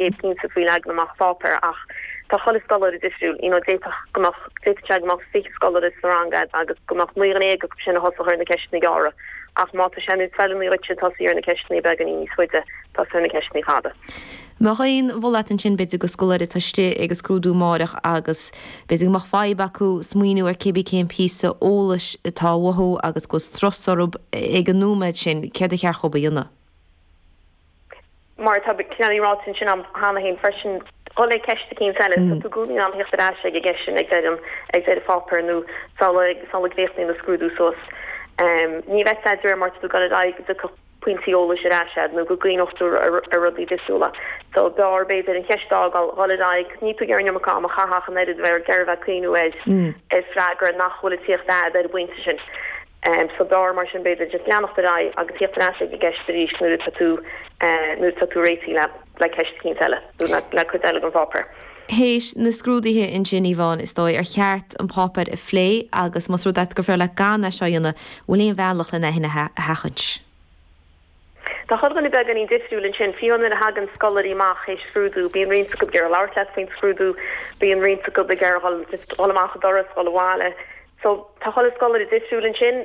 é cinnte faoin leagan amach pháipéir ach tá chuile scoláire difriúil, you know d'fhéadfadh go mbeadh, d'fhéadfadh sé go mbeadh fiche scoláire sa rang a'd agus go mbeadh naoi déag acu sin a thosódh ar na ceisteanna gearra ach má tá sé níos feiliúnaí dhuit tosaí ar na ceisteanna beagainín níos faide, tosaigh ar na ceisteanna fada. Mbeadh aon mholadh a'd ansin b'fhéidir go scoláire atá istigh ag an scrúdú amárach agus b'fhéidir go mbeadh fadhb acu smaoiniú ar cébí cén píosa eolais atá uathu agus go bhfuil strus orthub ag an nóiméad sin, céard ba cheart dhób a dhéanamh? mar atá cineál ráite ansin a'm cheana féin freisin, dul le ceist eicínt eile, tá tú i gcónaí in ann thíocht ar ais ag an gceist sin ag deireadh ag deireadh an pháipéir nó sula gcríochnaíonn do scrúdú suas. Ní bheadh a fhios a'd de réir mar atá tú ag dul ar aghaidh go dtiocfadh pointí eolais ar ais agat nó go gcuimhneodh tú ar rudaí difriúla. So b'fhearr b'fhéidir an cheist a fhágáil, dhul ar aghaidh, níl tú ag iarraidh an iomarca ama a chaitheamh ach an oiread a bheith ag iarraidh a bheith ag cuimhniú ar, ar freagra nach bhfuil ag tíocht a'd ar an bpointe sin. So dar, mar sin, b'fhéidir just leanacht ar aghaidh agus tíocht ar ais ag an gceist arís nuair atá tú nuair atá tú réitithe le le ceist eicínt eile nó le le cuid eile den pháipéar. Théis na scrúdaithe ansin, Yvonne, is dóigh, ar cheart an páipéar a phlé agus más rud é gur féarr leat gan é seo a dhéanamh, bhfuil aon bhealach len é shin a sheachaint? Tá chuile dhuine beagáinín difriúil ansin, fiú nuair a thagann scoláirí amach théis scrúdú, bíonn roinnt acu ag iarraidh labhairt leat faoin scrúdú, bíonn roinnt acu ag iarraidh dul, just, dul amach an doras, dul abhaile. So, tá chuile scoláire difriúil ansin.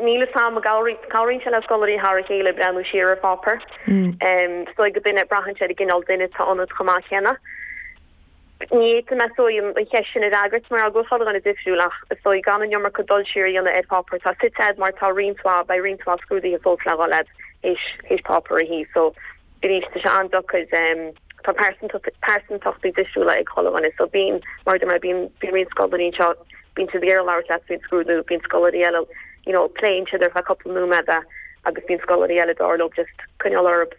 Níl fhios a'am, cabhraíonn, cabhraíonn sé le scoláirí thar a chéile ag breathnú siar ar pháipéar. Em, so ag an duine, braitheann sé ar an gcineál duine atá ionat chomh maith céanna. Ní fhéadfainn, is dóigh, an cheist sin a fhreagairt mar go bhfuil chuile dhuine difriúil ach, is dóigh, gan an iomarca dul siar a dhéanamh ar pháipéar atá suite a'd mar tá roinnt mhaith beidh roinnt mhaith scrúdaithe fós le dhul a'd théis páipéar a shuí so arís tá sé an-deacair Tá pearsantacht pearsantachtaí difriúla ag chuile dhuine so bíonn, mar a deir mé, bíonn bíonn roinnt scoláirí anseo bíonn siad ag iarraidh labhairt leat faoin scrúdú bíonn scoláirí eile you know pléann siad ar feadh cúpla nóiméad é agus bíonn scoláirí eile b'fhearr leo just coinneáil orthub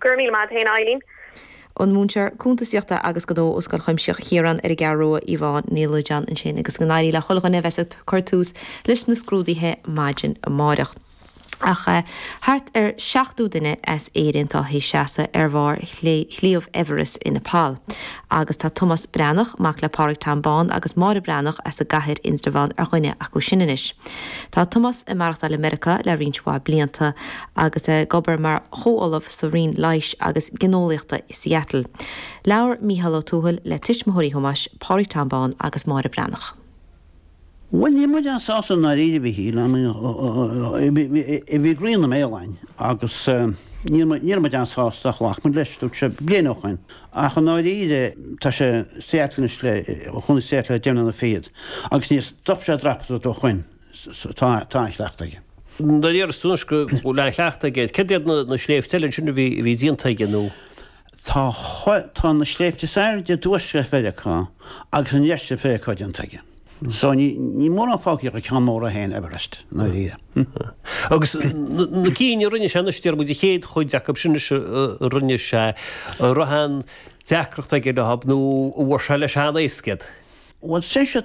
Go raibh míle maith a'd fhéin, a Eibhlín. An múinteoir cuntasaíochta agus gnó ó Scoil Chuimsitheach Chiaráin ar an gCeathrú Rua, Yvonne Ní Loideáin ansin agus go n-éirí le chuile dhuine a bheas ag cur tús leis na scrúduithe maidin amáireach. Ach thart ar 70 duine as Éirinn atá théis seasamh ar bharr Shliabh Everest i Nepal. Agus tá Tomás Breathnach, mac le Pádraig Tom Bán agus Máire Breathnach as an gCathair, Indreabhán, ar dhuine acu sin anois. Tá Tomás ag maireachtáil i Meiriceá le roinnt mhaith blianta agus ag obair mar chomhollamh sa Roinn Leighis agus Gineolaíochta i Seattle. Labhair Mícheál Ó Tuathail le tuismitheoirí Thomáis, Pádraig Tom Bán agus Máire Breathnach. Bhuel, ní raibh muid an-sásta i ndáiríre, a Mhíchíl, a bhí Grian Ó Maoláin, agus níl muid an-sásta, ghlac muid leis, dúirt sé bliain ó shin, ach i ndáiríre tá sé i Seattle anois le, chun Seattle le déanaí na fichead, agus níor stop sé ag dreapadh ó shin. tá an-chleachtadh aige. De réir an tuairisc go bhfuil an-chleachtadh aige, céard iad na sléibhte eile ansin a bhí déanta aige nó? Tá na sléibhte is airde i dtuaisceart Mheiriceá agus i ndeisceart Mheiriceá déanta aige. So níl mórán fágtha ach an ceann mór é féin, Everest, na ríthe. Agus na cinn a rinne sé, anois deir muid an chéad chuid acu sin a rinne sé, an raibh aon deacracht aige leo nó an bhfuair sé leis an-éasca iad? Bhuel, seisear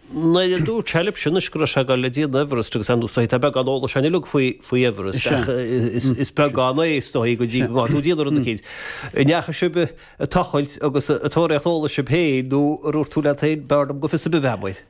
nuair a dúirt sé lib sin is go raibh sé ag dul le déanamh Everest agus anuas uaidh, tá beagán eolais againn uilig faoi Everest ach is beag an mhaith is dóigh go dtí go mbíonn tú ag déanamh rud eicínt. An ndeachaigh sib ag tochailt agus ag tóraíocht eolais sib féin nó ar dhúirt tú leat féin, b'fhearr liom go bhfiosaí a bheadh muid.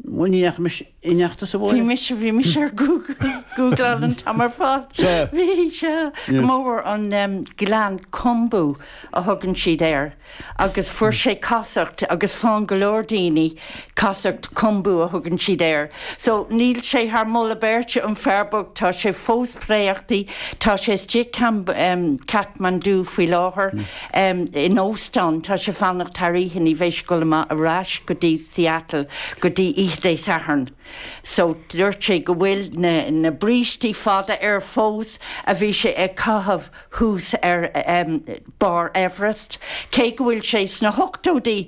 Bhuel, ní dheachaimis ineachta sa bhfómhar. Bhí mise, bhí mise ag googláil an t-am ar fad. Bhí sé go mór an gleann Khumbu a thugann siad air. agus fuair sé casacht agus faigheann go leor daoine, casacht Khumbu a thugann siad air. So, níl sé thar mholadh beirte, an fear bocht, tá sé fós préachta, tá sé istigh i Kathmandu faoi láthair, em in óstán, tá sé ag fanacht thar oíche, ní bheidh sé ag dul amach ar ais go dtí Seattle go dtí oíche Dé Sathairn. So, dúirt sé go bhfuil na, na brístí fada air fós a bhí sé a chaitheamh, thuas ar bharr Everest, cé go bhfuil sé sna hochtóidí.